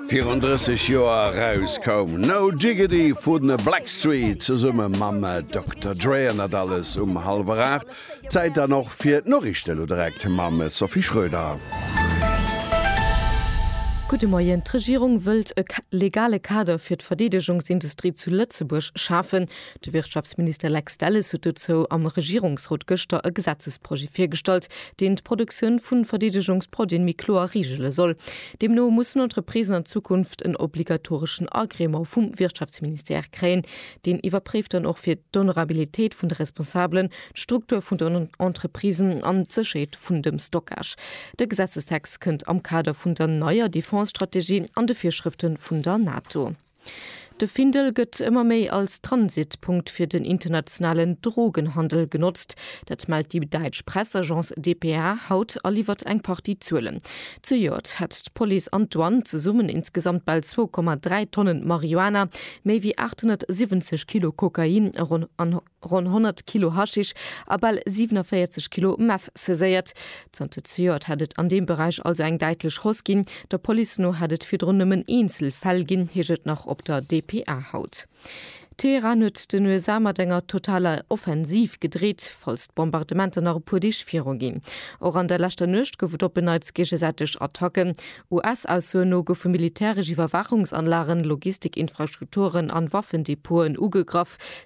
Virun 30 Joer eraus koum No Jiggity vu The Blackstreet zesumme mam Dokter Dre an dat alles um hallwer 8. Zäit dann och fir d'Noriichte lo direkt mam Sophie Schröder. Gudde Moien. D'Regierung wëllt e legale Kader fir d'Verdeedegungsindustrie zu Lëtzebuerg schafen. De Wirtschaftsminister Lex Delles huet dozou am Regierungsrot gëschter e Gesetzesprojet virgestallt, deen d'Produktioun vu Verdeedegungsproduen méi kloer reegele soll. Deemno mussen Entreprisen an Zukunft en obligatoreschen Agrément vum Wirtschaftsministère kréien. Deen iwwerpréift dann och fir d'Honorabilitéit vun de Responsabelen, d'Struktur vun den Entreprisen an d'Sécherheet vun dem Stockage. De Gesetzestext kënnt am Kader vun der neier Defense-Strategie an de Virschrëfte vun der NATO. De Findel gëtt ëmmer méi als Transitpunkt fir den internationalen Drogenhandel genotzt. Dat mellt déi däitsch Pressagence dpa haut a liwwert eng Partie Zuelen. Zejoert hätt d'Police an d'Douane zesummen insgesamt bal zwou Komma dräi Tonnen Marihuana, méi wéi 870 Kilo Kokain a ronn ronn 100 Kilo Haschisch a bal 47 Kilo Meth saiséiert. Zanter zejoert hätt et an deem Beräich also eng däitlech Hausse ginn. Der Police no hätt et virdrun nëmmen eenzel Fäll ginn, heescht et nach op der dpa haut. Teheran huet den USA mat enger totaler Offensiv gedreet, falls d'Bombardementer nach e puer Deeg viruginn. Och an der leschter Nuecht gouf et op en Neits géigesäiteg Attacken. US-Aussoen no goufe militäresch Iwwerwaachungsanlagen, Logistik-Infrastrukturen an Waffendepoten ugegraff,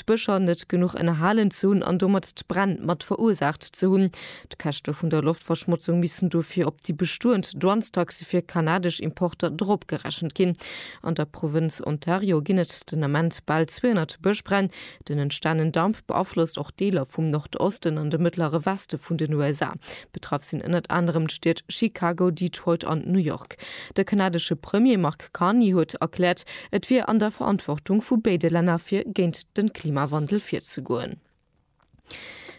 d'Bëscher net genuch ënnerhalen ze hunn an domat d'Bränn mat verursaacht ze hunn. D'Käschte vun der Loftverschmotzung missten dofir op déi bestoend Douanestaxe fir kanadesch Importer dropgerechent ginn. An der Provënz Ontario ginn et den Ament bal 200 Bëschbränn. Den entstanen Damp beaflosst och Deeler vum Nordosten an de mëttlere Weste vun den USA. Betraff sinn ënnert anerem d'Stied Chicago, Detroit an New York. De kanadesche Premier Mark. Carney huet erkläert, et wier an der Verantwortung vu béide Länner fir géint de Klimawandel virzegoen.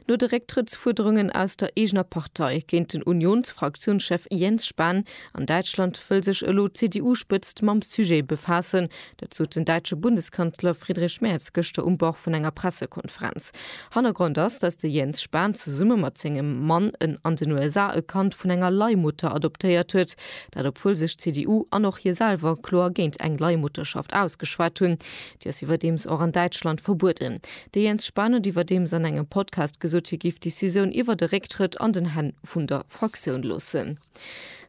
No de Récktrëttsfuerderungen aus der eegener Partei géint den Unions-Fraktiounschef Jens Spahn an Däitschland wëll sech elo d'CDU-Spëtzt mam Sujet befaassen. Dat sot den däitsche Bundeskanzler Friedrich Merz gëschter um Bord vun enger Pressekonferenz. Hannergrond ass, datt de Jens Spahn zesumme mat sengem Mann en an den USA e Kand vun enger Leihmutter adoptéiert huet, Dat obwuel sech d'CDU an och hie selwer kloer géint eng Leihmutterschaft ausgeschwat hunn. Déi ass iwwerdeems och an Däitschland verbueden. De Jens Spahn huet iwwerdeems an engem Podcast gesot, hie géif d'Decisioun iwwer de Récktrëtt an den Hänn vun der Fraktioun loossen.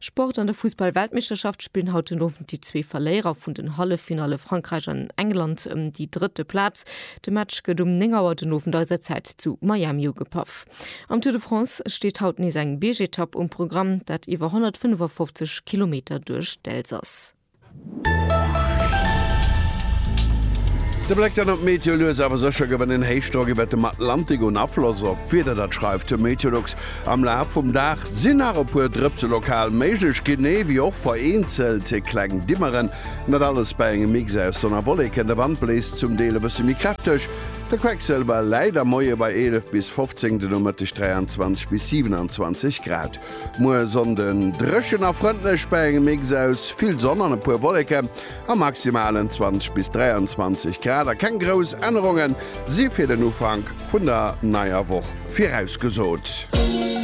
Sport, An der Fussball-Weltmeeschterschaft spillen haut den Owend déi zwee Verléierer vun den Halleffinalle Frankräich an England ëm déi drëtte Plaz. De Match gëtt um 9 Auer den Owend eiser Zäit zu Miami ugepaff. Am Tour de France steet haut nees eng Biergetapp um Programm, dat iwwer 155 Kilometer duerch d'Elsass. De Bléck dann op d'Meteo, Lues awer sécher gewen en Héichdrock iwwert dem Atlantik un Afloss op d'Wieder, dat schreift de Meteolux. Am Laf vum Dag sinn nach e puer Drëpse lokal méiglech, genee wéi och vereenzelt kleng Dimmeren. Dat alles bei engem Mix aus Sonn a Wolleken, de Wand bléist zum Deel e bësse méi kräfteg. De Quecksëlwer läit am Moie bei 11 bis 15, de Nomëtteg 23 bis 27 Grad. Muer Sonnden dréchen a frëndlech bei engem Mix aus vill Sonn an e puer Wolleken. A maximalen 20 bis 23 Grad a keng grouss Ännerunge si fir den Ufank vun der neier Woch virausgesot.